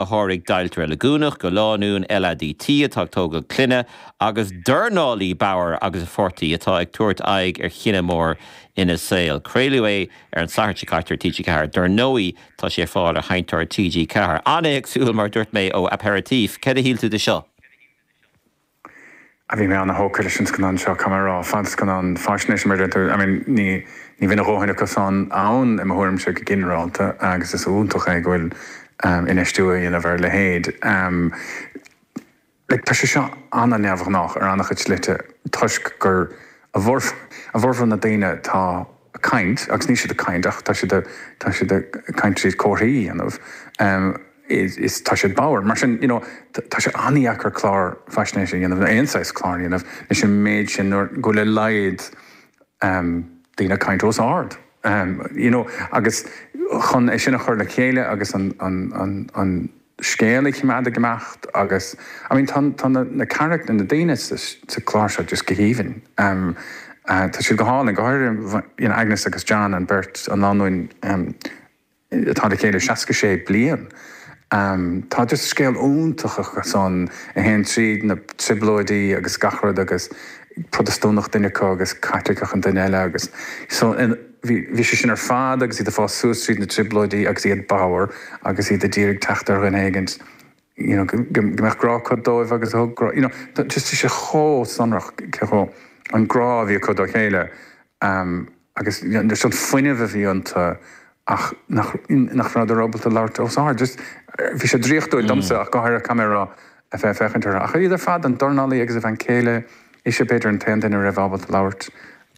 a sháraigh deighilt reiligiúnach go lánúin LADT atá ag tógail clainne, agus dornálaí Bauer agus a pháirtí atá ag tabhairt aghaidh ar chinneadh mór ina saol. Craoladh é ar an Satharn seo caite ar TG4. Dár ndóigh tá sé ar fáil ar sheinnteoir TG4. An-éagsúil, mar a dúirt mé, ó Aperitif. Cad a shíl tú de seo? Á bhí mé an-thógtha leis an scannán seo, caithfidh mé a rá, fadscannán faisnéise mar a déarfá, I mean ní ní bhíonn a dhóthain acusan ann i mo thuairimse go ginearálta agus is iontach é go bhfuil infheistiú á dhéanamh ar a leithéid. Like tá sé seo an-neamhghnách ar an-chuid slite toisc gur a bhformhór na daoine atá a' caint agus níl siad a' caint ach tá siad a' tá siad a' caint tríd comharthaí a dhéanamh, is tá siad bodhar. Mar sin, you know, tá sé an-deacair clár faisnéise a dhéanamh, nó aon saghas cláir a dhéanamh, leis an méid sin, nuair, go bhfuil a laghad ehm daoine ag caint os ard. Ehm, you know, agus chun é sin a chur le chéile agus an, an, an, an scéal a choimeád ag imeacht agus, I mean, tá, tá na, na carachtair, na daoine sa, sa chlár seo just go haoibhinn. Ehm, tá siad go hálainn, go háirithe, you know, Agnes agus John, an beirt, an lánúin, ehm, atá le chéile 66 bliain. Tá just scéal iontach acusan a théann tríd na trioblóidí agus gach rud agus Protastúnach duine acu agus Caitliceach an duine eile agus so bhí sé sin ar fad agus iad ag fás suas tríd na trioblóidí agus iad bodhar agus iad ag iarraidh teacht ar dhuine éigint you know go go go mbeadh grá acu dóibh agus a thug grá you know just tá sé chomh sonrach cé chomh an grá a bhí acu dá chéile um agus you know just an fuinneamh a bhí iontu ach nach nach raibh siad ábalta labhairt os ard just eh, bhí sé draíochtúil domsa ach go háirithe cam ar a fé féchaint ar ach iad ar fad an dornálaí agus a bhean chéile ise b'fhéidir an t-aon duine a raibh ábalta labhairt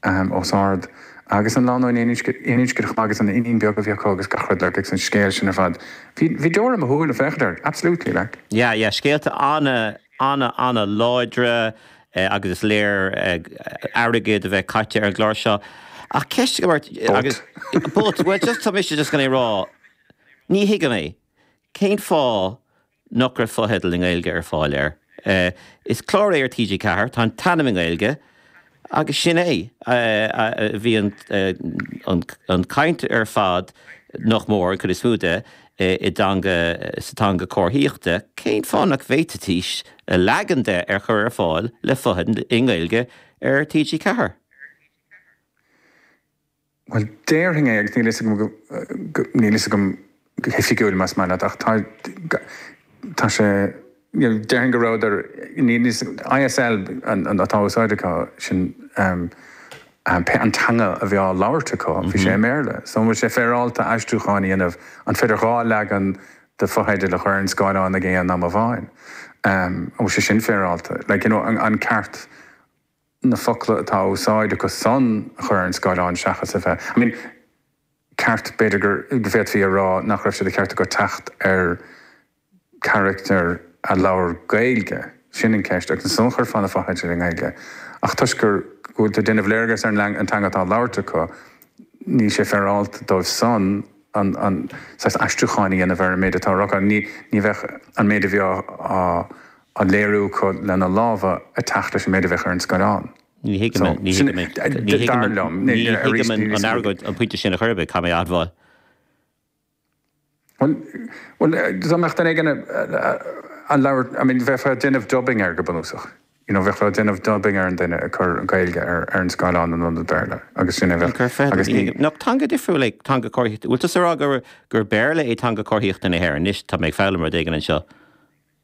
ahem, os ard, agus an lánúin aoninscneach agus an iníon beag a bhí acu agus gach rud, like, agus an scéal sin ar fad. Bhí, bhí deora i mo shúile ag féachaint air, absolutely, like. Yeah, yeah, scéalta ana, ana, ana láidre agus is léir airgead a bheith caite ar an gclár seo ach ceist agam ort agus, but, well, just, tá mise just gan é rá, ní thuigim é, cén fáth nach raibh fotheidil i nGaeilge ar fáil air. Is clár é ar TG4, tá an t-ainm i nGaeilge agus sin é. Bhí an chaint ar fad, nach mór, an chuid is mó de, sa teanga comharthaíochta, cén fáth nach bhféadfaidís leagan de a chur ar fáil le fotheidil i nGaeilge ar TG4? Bhuel, déarfainn é agus níl a fhios agam go, go, níl a fhios agam go hoifigiúil más maith leat ach tá, tá, tá sé, you know, déarfainn go rabhadar, níl a fhios, ISL an, an, atá á úsáid acu, sin ehm, ehm, hé an teanga a bhí á labhairt acu, bhí sé i mBéarla. So an bhfuil sé féaráilte aistriúcháin a dhéanamh, an féidir dhá leagan de fotheidil a chur ar an scáileán ag aon am amháin? Ehm, an bhfuil sé sin féaráilte? Like, you know, an, an ceart. na focla atá á úsáid acusan a chur ar an scáileán seachas a bheith, I mean, ceart, b'fhéidir go bhféadfaí a rá nach raibh sé de cheart acu teacht ar charactair a labhair Gaeilge, sin an ceist, agus ansan chuirfeá na fotheidil i nGaeilge ach toisc go bhfuil tú ag déanamh léargas ar an teanga atá á labhairt acu níl sé féaráilte dóibhsean an saghas aistriúcháin a dhéanamh ar an méid atá á rá acu, ní bheadh an méid a bhí á á léiriú acu lena lámha ag teacht leis an méid a bheadh ar an scáileán. Ní thuigim é, ní thuigim é, ní thuigim, ní thuigim an argóint, an pointe sin ar chor ar bith, caithfidh mé a admháil. Bhuel, bhuel, dá mbeadh duine éigin a labhair, I mean, bheifeá ag déanamh dubbing air go bunúsach, you know, bheifeá ag déanamh dubbing ar an duine ag cur an Ghaeilge ar an scáileán in ionad Béarla agus sin a bheadh, agus ní. Nach teanga difriúil é teanga comharthaíochta, bhfuil tusa ag rá gur Béarla é teanga comharthaíochta na hÉireann, anois tá mé ag foghlaim rud éigin anseo.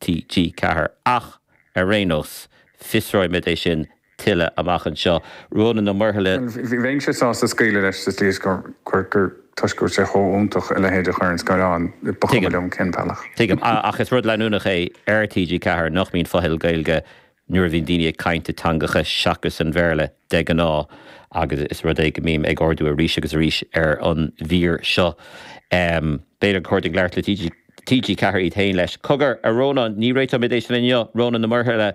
TG4. Ach, ar aon nós, fiosróimid é sin tuilleadh amach anseo. Rónán Ó Muirthile. Bhuel, bheinnse sásta scaoileadh leis sa tslí is gur, gur, gur, toisc go bhfuil sé chomh iontach a leithéid a chur ar an scáileán, ba chuma liom cén bealach. Tuigim. Ach is rud leanúnach é ar TG4 nach mbíonn fotheidil Gaeilge Nuair a bhíonn daoine ag caint i dteangacha seachas sa Bhéarla de ghnáth, agus is rud é a mbím á ardú arís agus arís ar an mír seo, b'fhéidir gur chóir dúinn labhairt le TG4 iad féin faoi. Cogar, a Rónáin, ní réiteoimid é sin inniu, Rónán Ó Muirthile.